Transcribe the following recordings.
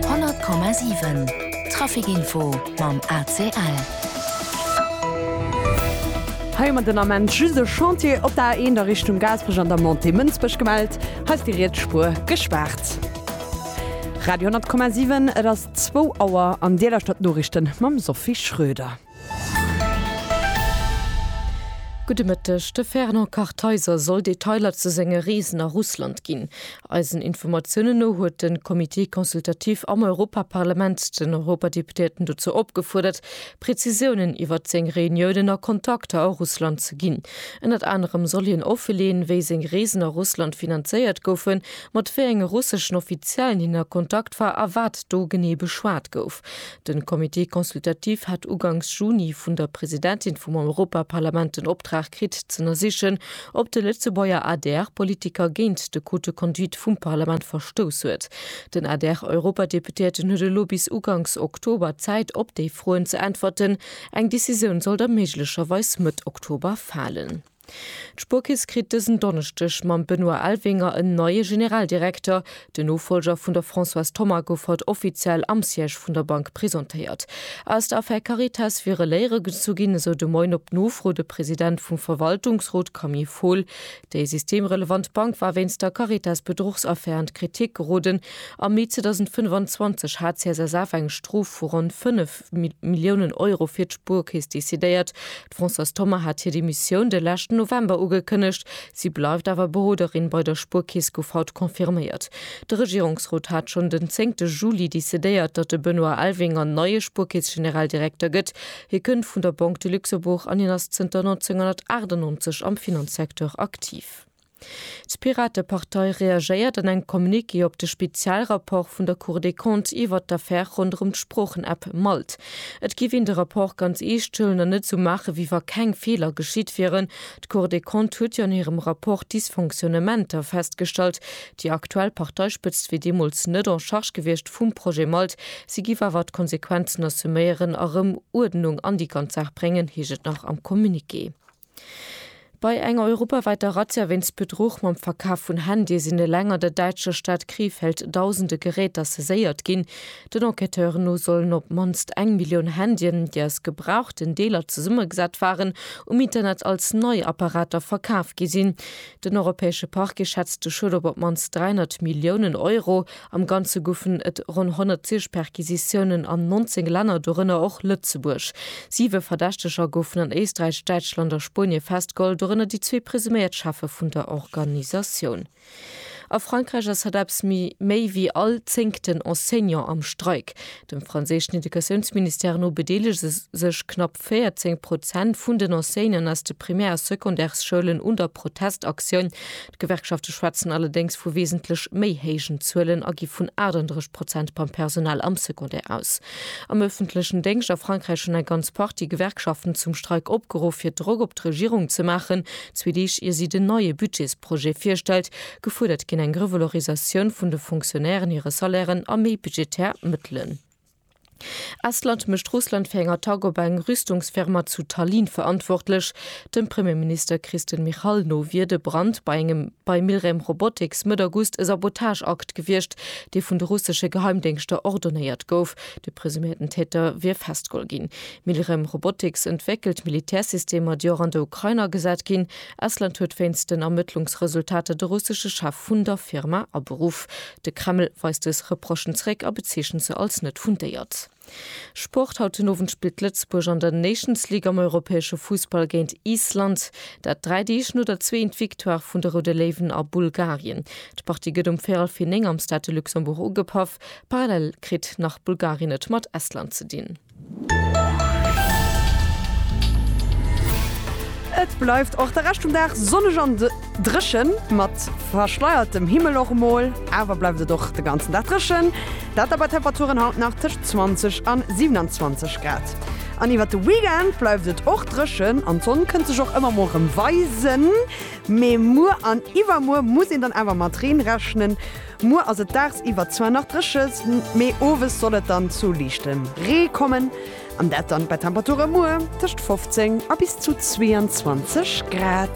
100,7 Traficinfo mam ACL. Hei mat den Ament just e Chantier op der A1 a Richtung Gaasperech an der Montée Mënsbech gemellt. Hei ass déi riets Spuer gespaart. Radio 10,7 Et ass zwou Auer an Dir lauschtert d'Noriichten mam Sophie Schröder. Gudde Mëtteg, De Fernand Kartheiser soll Detailer zu senge Reesen a Russland ginn. Eisen Informatiounen no huet de Comité consultatif am Europaparlament den Europadeputéierten dozou opgefuerdert, Prezisiounen iwwert seng Reuniounen a Kontakter a Russland ze ginn. Ënnert anerem soll hien offeleeën, wéi seng Reesen a Russland finanzéiert goufen, mat wéi enge russeschen Offiziellen hien a Kontakt war a wat do genee beschwat gouf. Den Comité consultatif hat ugangs Juni vun der Presidentin vum Europaparlament den Optrag kritt z'ënnersichen, ob de Lëtzebuerger ADR-Politiker géint de Code de conduite vum Parlament verstouss huet. Den ADR-Europadeputéierten huet elo bis ugangs Oktober Zäit op déi Froen ze äntwerten. Eng Decisioun sollt da méiglecherweis Mëtt Oktober falen. D'Spuerkeess kritt dësen Donneschdeg mam Benoît Elvinger en neie Generaldirekter. Den Nofollger vun der Françoise Thoma gouf haut offiziell am Siège vun der Bank presentéiert. Aus der Affär Caritas wiere Léiere gezu ginn, esou de Moien op Nofro de President vum Verwaltungsrot Camille Fohl. Déi systemrelevant Bank war wéinst der Caritas-Bedruchsaffär an d'Kritik geroden. Am Mee 2025 hat d'CSSF eng Strof vu ronn 5 Milliounen Euro fir d'Spuerkeess decidéiert. D'Françoise Thoma hat hir Demissioun de leschten November ugekënnegt. Si bleift awer Beroderin bei der Spuerkeess, gouf haut confirméiert. De Regierungsrot hat schonn den zéngte Juli decidéiert, datt de Benoît Elvinger neie Spuerkeess-Generaldirekter gëtt. Hie kënnt vun der Banque de Luxembourg an hien ass zënter 1998 am Finanzsecteur aktiv. D'Piratepartei reagéiert an engem Communiqué op de Spezialrapport vun der Cour des Comptes iwwert d'Affär ronderëm d'Sproochen-App Malt. Et géif een de Rapport ganz eescht huelen an net esou maachen, wéi wa keng Feeler geschitt wieren. D'Cour des Comptes huet jo an hirem Rapport Dysfonctionnementer festgestallt. Déi aktuell Parteispëtzt wier deemools net en charge gewiescht vum Projet Malt. Si géif awer d'Konsequenzen assuméieren a rëm Uerdnung an déi ganz Saach bréngen, heescht et nach am Communiqué. Bei enger europawäiter Razzia wéinst Bedruch mam Verkaf vun Handye sinn eleng an der däitscher Stad Krefeld dausende Geräter saiséiert ginn. Den Enquêteuren no sollen op d'mannst eng Millioun Handyen, déi aus gebrauchten Deeler zesummegesat waren, um Internet als nei Apparater verkaf gi sinn. Den europäesche Parquet schätzt de Schued op op d'mannst 300 Milliounen Euro. Am Ganze goufen et ronn 110 Perquisitiounen an 19 Länner, dorënner och Lëtzebuerg. Siwe Verdächteger goufen an Éisträich, Däitschland a Spuenie festgeholl, dorënner déi zwee presuméiert Cheffe vun der Organisatioun. A Frankräich ass hatt eppes méi wéi all zéngten Enseignant am Streik. Dem franséischen Educatiounsministère no bedeelege sech knapp 14 Prozent vun den Enseignanten aus de Primär a Secondaires-Schoulen un der Protestaktioun. D'Gewerkschafte schwätzen allerdéngs vu wesentlech méi héijen Zuelen a gi vun 38 Prozent beim Personal am Secondaire aus. Am ëffentlechen Déngscht a Frankräich hunn eng ganz Partie Gewerkschaften zum Streik opgeruff, fir Drock op d'Regierung ze maachen, zwee Deeg ier si den neie Budgetsprojet virstellt. Gefuerdert ginn eng Revalorisatioun vun de Fonctionnairen hire Salairen a méi budgetär Mëttelen. Estland mécht Russland fir eng Attack op eng Rüstungsfirma zu Tallinn verantwortlech. Dem Premierminister Kristen Michal no wier de Brand bei engem bei Milrem Robotics Mëtt August e Sabotageakt gewiescht, dee vun de russesche Geheimdéngschter ordonéiert gouf. De presuméierten Täter wier festgeholl ginn. Milrem Robotics entwéckelt Militärsystemer, déi och an der Ukrain agesat ginn. Estland huet wéinst den Ermëttlungsresultater de russesche Chef vun der Firma aberuff. De Kreml weist dës Reprochen zeréck a bezeechent se als net fundéiert. Sport, Haut den Owend spillt Lëtzebuerg an der Nations League am europäesche Fussball géint Island. Dat dräi Deeg no der zweeënt Victoire vun de Roude Léiwen a Bulgarien. D'Partie gëtt um véierel vir néng am Stade de Luxembourg ugepaff. Parallel kritt nach Bulgarien et mat Estland ze dinn. Et bleift och de Rescht vum Dag sonneg an dréchen, mat verschleiertem Himmel och emol. Awer bleift et och de ganzen Dag dréchen, dat da bei Temperaturen haut nach tëscht 20 an 27 Grad. An iwwert de Weekend bleift et och dréchen an d'Sonn kënnt sech och ëmmer mol rëm weisen. Mee muer an iwwermuer muss een dann awer mat Reen rechnen. Muer ass et daagsiwwer zwar nach dréche, mee owes soll et dann zu liichtem Ree kommen an dat dann bei Temperature muer tëscht 15 a bis zu 22 Grad.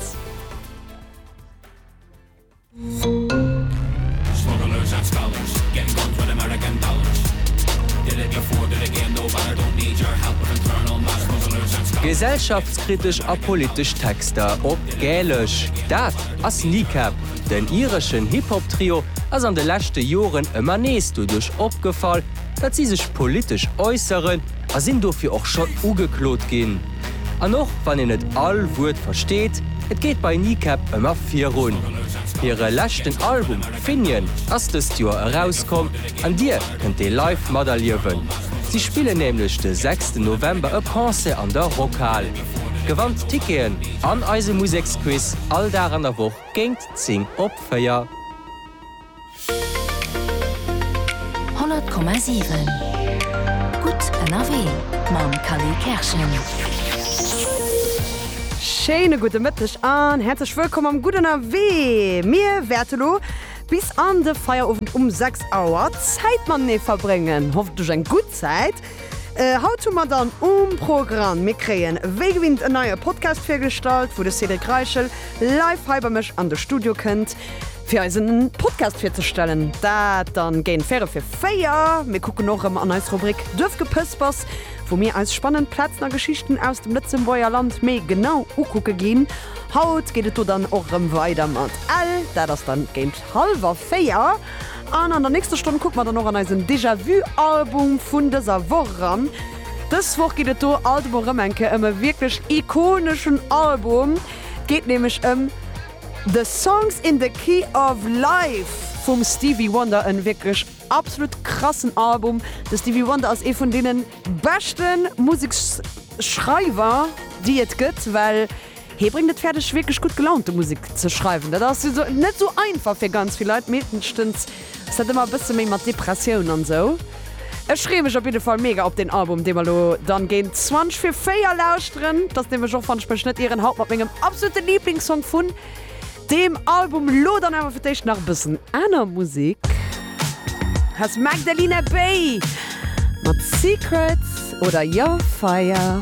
Gesellschaftskritesch a politesch Texter op Gälesch, dat ass Kneecap! Den ireschen Hip-Hop-Trio ass an de leschte Joren ëmmer nees doduerch opgefall, datt si sech politesch äusseren a sinn dofir och schonn ugeklot ginn. An och wann een net all Wuert versteet, et geet bei Kneecap ëmmer virun. Hire leschten Album Finian ass dëst Joer erauskomm an Dir kënnt dee live materliewen. Si spillen nämlech de sechsten November e Concert an der Rockhal. Gewannt Ticketen an eise Museksquiz all Dag an der Woch. Géint 10 op 4. 100,7 gutt ënnerwee mam Khalil Kerschen. Schéine gudde Mëtteg an häerzlech wëllkomm am Gutt ënnerwee. Mir wäerte lo bis an de Feierowend um 6 Auer Zäit matenee verbréngen. Hoffentlech eng gutt Zäit. Haut hu mer dann um Programm, mir kréien wéi gewinnt en neie Podcast virgestallt, wou de Cédric Reichel live hei bei mech an de Studio kënnt, fir eis en Podcast virzestellen. Dat dann géint véierel fir véier. Mir kucken och erëm an eis Rubrik Duerfgepëspers, wou mir eis spannend Plazen a Geschichten aus dem Lëtzebuerger Land méi genau ukucke ginn. Haut geet et do dann och erëm weider mat Ell, dat ass dann géint Halwer véier. An an der nächster Stonn kucke mer dann och an eisen Déjà-vu-Album vun dëser Woch eran. Dës Woch geet et do alt emol erëm eng Kéier ëm e wierklech ikoneschen Album. Et geet nämlech ëm The Songs in the Key of Life vum Stevie Wonder. E wierklech absolut krassen Album. De Stevie Wonder ass ee vun deene beschte Museksschreiwer, déi et gëtt, well Hie bréngt et fäerdeg wierklech gutt gelaunte Musek ze schreiwen. Dat ass net esou einfach fir ganz vill Leit, meeschtens ass dat ëmmer e bësse méi mat Depressioun an esou. Ech freeë mech op jidde Fall mega op deen Album, dee mer elo dann géint zwanzeg vir véier lauschteren. Et ass nämlech och, wann ech mech net ieren, haut mat mengem absolute Liiblingssong vun deem Album. Elo dann awer fir d'éischt nach e bëssen aner Musek. Hei ass d'Magdalena Bay mat Secrets oder Your Fire.